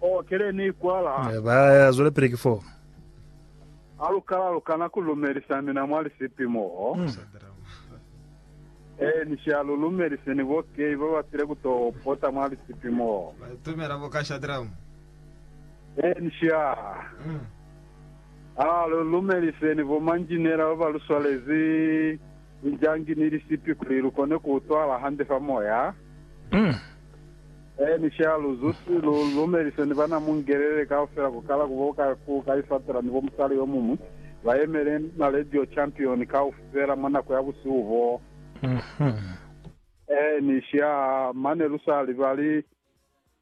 Oh, ki le ni kwala. Ba zwela pili ki foo. Ha lu kala lu kana ku lumelisa mina mwa lisipi moo. Ee, ni sha lu lumelise ni bo Kay ba ba sile ku to pota mwa lisipi moo. Ee, ni sha. Ha lu lumelise ni bo manjinela ba ba lu swalezi lijangi ni lisipi kuli lu kone ku utwala hande fa moya. Eeni, sha lu zusi, lu lumelise ni bana mu ngelele kaufela ku kala ku bo ka, ku ka isatela ni bo musali yo muñwi, ba yemele na Radio Champion kaufela mwa nako ya busihu boo. Mm-hmm. Eeni, sha, mane lu sa libali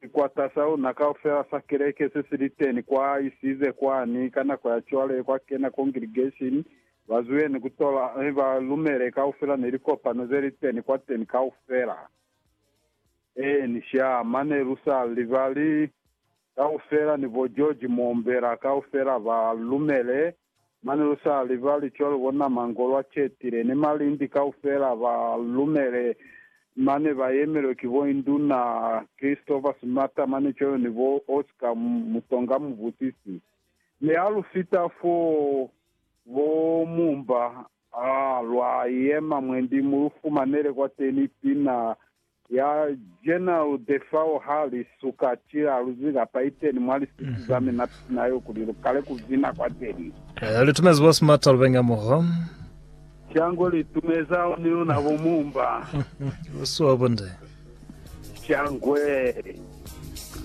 sikwata sa luna kaufela sa keleke se si li teni kwa, isize kwani, ka nako ya cwale, kwa kena congregation, ba zwile ni ku tola, mi ba lumele kaufela ni likopano ze li teni kwateni kaufela. Ee, ni sha, mane lu sa libali kaufela ni bo George Moombela kaufela ba lumele, mane lu sa libali cwalo bo Nama Ngolwa Chetile ni Malindi kaufela ba lumele, mane ba yemelwe ki bo Induna Christopher Sumata mane cwalo ni bo Oscar Mutonga Mubusisi. Mi ha lu fita foo, bo Mumba A lwa yema mwendi mu lu fumanele kwateni pina ya General Defao ha li suka cila lu zika pa iteni mwa lisisi za mina pina yo kuli lu kale ku bina kwateni. Eh, li tumezi boss Mata Lubenga moho. Shangwe li tumeza ni luna bo Mumba. Ki boss wa bo nde. Shangwe.